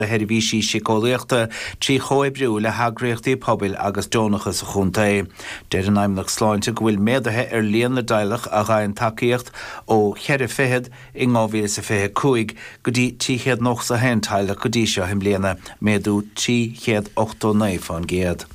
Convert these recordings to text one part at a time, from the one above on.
do sheirbhísí síceolaíochta trí chomhoibriú le heagraíochtaí pobail agus deonacha sa chontae. Deir an Fheidhmeannacht Sláinte go bhfuil méadaithe ar líon na dteaghlach a gheibheann tacaíocht ó cheithre fichid in 2025 go dtí 391 teaghlach go dtí seo i mbliana, méadú 389%.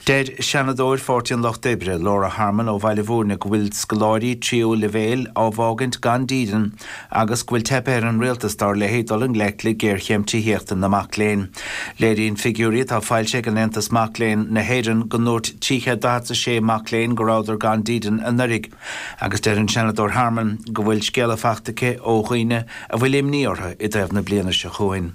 Deir Seanadóir Pháirtí an Lucht Oibre, Laura Harmon ó Bhaile Bhúirne go bhfuil scoláirí tríú leibhéal á bhfágaint gan dídean agus go bhfuil teipthe ar an rialtas dar léithe dul i ngleic le géarchéim tithíochta na mac léinn. Léiríonn figiúirí atá foilsithe ag an Aontas Mac Léinn na hÉireann go ndúirt 346 mac léinn go rabhadar gan dídean anuraidh agus deir an Seanadóir Harmon go bhfuil scéala faighte aici ó dhaoine a bhfuil imní orthu i dtaobh na bliana seo chugainn.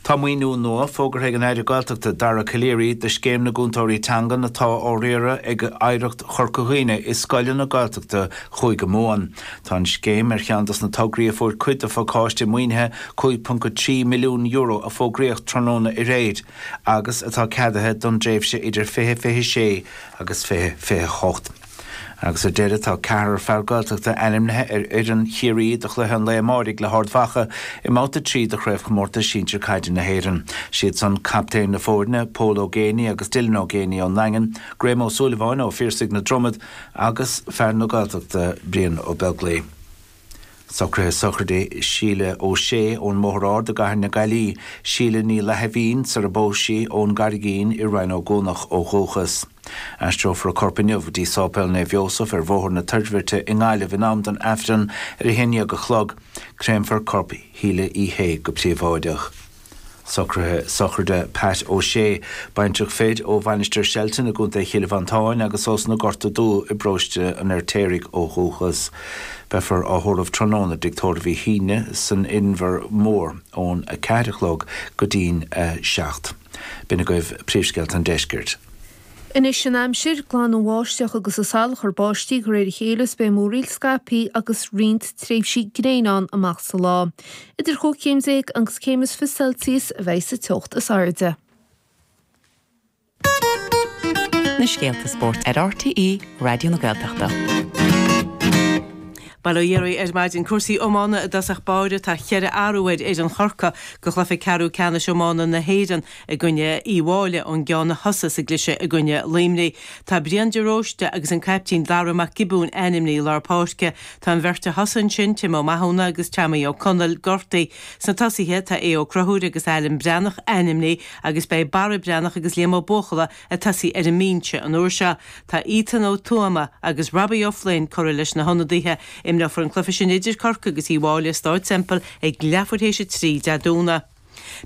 Tá maoiniú nua fógartha ag an Aire Gaeltachta Dara Calleary do Scéim na gCúntóirí Teangan atá á riaradh ag Oidhreacht Chorca Dhuibhne i scoileanna Gaeltachta Chúige Mumhan. Tá an scéim ar cheann dos na tograí a fuair cuid de phacáiste maoinithe €5.3 milliún a fógraíodh tráthnóna aréir agus atá ceadaithe don dtréimhse idir 2026 agus 2028. Agus ar deireadh, tá ceathrar fear Gaeltachta ainmnithe ar fhoireann Chiarraí do chluiche an lae amáirigh le hArd Mhacha i mbabhta 3 de Chraobhchomórtas Sinsir Caide na hÉireann. Siadsan captaen na foirne, Pól Ó Géibheannaigh agus Dylan Ó Géibheannaigh ón nDaingean, Graham Ó Súilleabháin ó Phiarsaigh na Dromoda agus fear na Gaeltachta, Brian Ó Beaglaoich. Socruithe sochraide Síle O'Shea ón mBóthar Ard i gCathair na Gaillí, Síle Ní Fhlaithimhín, sar a bpós sí, ón gCarraigín i Rinn Ó gCuanach ó dhúchas. Aistreofar a corp inniu go dtí Sáipéal Naomh Iósaf ar Bhóthar na Toirbhirte i nGaillimh in am don Aifreann ar a haon déag a chlog. Créamfar corp Shíle Uí Shé go príobháideach. Socruithe sochraide Pat O'Shea, baintreach fir ó Mhainistir Shelton i gContae Chill Mhantáin agus as na Gorta Dubha i bparóiste an Fheirtéaraigh ó dhúchas. Beifear á thórramh tráthnóna i dtigh tórraimh Uí Shuibhne san Inbhear Mór ón 4 a chlog go dtí'n 7. B'in agaibh príomhscéalta an deiscirt. Anois an aimsir, glanfaidh an bháisteach agus an salachar báistí de réir a chéile is beidh múraíl scaipthe agus roinnt tréimhsí gréine ann amach sa lá. Idir chúig chéim déag agus céim is fiche Celsius a bheidh sa teocht is airde. na scéalta spóirt ar RTÉ Raidió na Gaeltachta. Bail ó Dhia oraibh ar maidin. Cúrsaí iomána i dtosach báire. Tá cheithre athrú ar fhoireann Chorcaí do chluiche ceathrú ceannais iomána na hÉireann. I gcoinne Uíbh Fhailí ón gceann a thosaigh sa gcliseadh i gcoinne Luimnigh, tá Brian de Róiste agus an caiptín Dara Mac Giobúin ainmnithe i lár páirce. Tá an bheirt a thosaigh ansin, Tim Ó Mathúna agus Teamaí Ó Conaill, gortaithe. Sna tosaithe, tá Aodh Ó Conchúir agus Alan Breathnach ainmnithe agus beidh Barra Breathnach agus Liam Ó Buachalla ag tosaí ar an mbinse an uair seo. Tá Ethan Ó Tuama agus Robbie Ó Floinn curtha leis na hionadaithe. Imreofar an cluiche sin idir Corcaigh agus Uíbh Fhailí i Staid Semple ag leathuair théis a trí Dé Domhnaigh.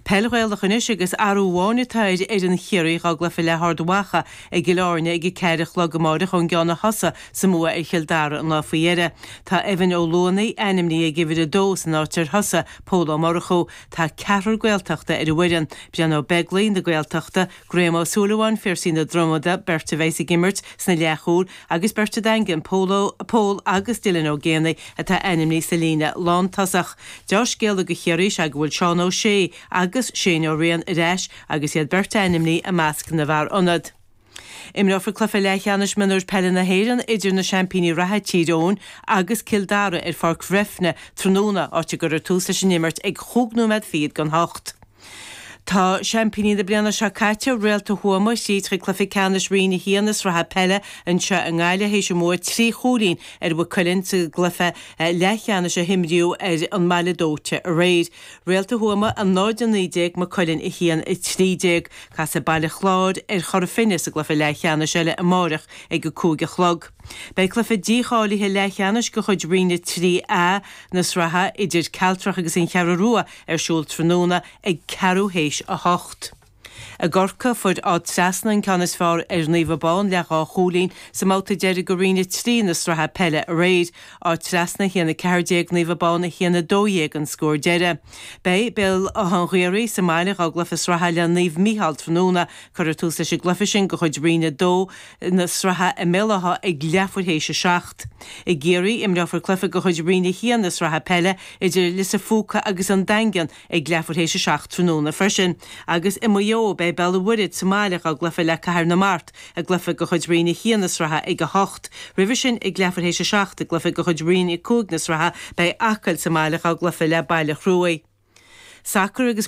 Peil Ghaelach anois agus athrú amháin atá ar fhoireann Chiarraí dhá gcluiche le hArd Mhacha i gCill Áirne ag a ceathair a chlog amáireach ón gceann a thosaigh sa mbua ar Chill Dara an lá faoi dheireadh. Tá Evan Ó Luanaigh ainmnithe ag uimhir a dó san áit ar thosaigh Pól Ó Murchú. Tá ceathrar Gaeltachta ar an bhfoireann, Brian Ó Beaglaoich na Gaeltachta, Graham Ó Súilleabháin, Phiarsaigh na Dromoda, beirt a bheidh ag imirt sna leathchúil agus beirt as an Daingean, Pól agus Dylan Ó Géibheannaigh atá ainmnithe sa líne lántosach. Deá-scéala do Chiarraí is ea go bhfuil Seán Ó Sé agus Shane Ó Riain ar ais agus iad beirt ainmnithe i measc na bhfear ionad. Imreofar cluiche leathcheannais mionúir peile na hÉireann idir na seaimpíní reatha Tír Eoghain agus Cill Dara ar Pháirc Bhreifne tráthnóna, áit a gcuirfear tús leis an imirt ag chúig nóiméad fichead don hocht. Tá seaimpíní na bliana seo caite, Réalta Thuama, thríd chuig cluiche ceannais Roinn 1 na Sraithe Peile anseo i nGaillimh théis a mbua trí chúilín ar Mhaigh Cuilinn sa gcluiche leathcheannais a himríodh ar an mBaile Dóite aréir. Réalta Thuama 0-19 Maigh Cuilinn 1-13. Casfaidh Baile Chláir ar Chora Finne sa gcluiche leathcheannais eile amáireach ag a cúig a chlog. Beidh cluiche dícháilithe leathcheannais de chuid Roinn 3A na sraithe idir Cealtrach agus An Cheathrú Rua Ar siúl tráthnóna ag ceathrú théis a hocht. I gCorcaigh fuair Áth Treasna an ceann is fearr ar Naomh Abán le dhá chúilín sa mbabhta deiridh de Roinn 3 na sraithe peile aréir, Áth Treasna 1 14 Naomh Abán 1 12 an scór deireadh. Beidh Béal Átha an Ghaorthaidh sa mbaile dhá gcluiche sraithe le Naomh Micheál tráthnóna. Cuirfear tús leis an gcluiche sin de chuid Roinn 2, na sraithe i mBéal Átha ag leathuair théis a seacht. I gCiarraí, imreofar cluiche de chuid Roinn 1 na sraithe peile idir Lios an Phúca agus An Daingean ag leathuair théis a seacht tráthnóna freisin, agus i Maigh Eo, beidh Béal an Mhuirthead sa mbaile dhá gcluiche le Cathair na Mart i gcluiche de chuid Roinn 1 na sraithe ag a hocht. Roimhe sin ag leathuair théis a seacht i gcluiche de chuid Roinn 5 na sraithe, beidh Acaill sa mbaile dhá gcluiche le Baile Chruaich. Sacar agus.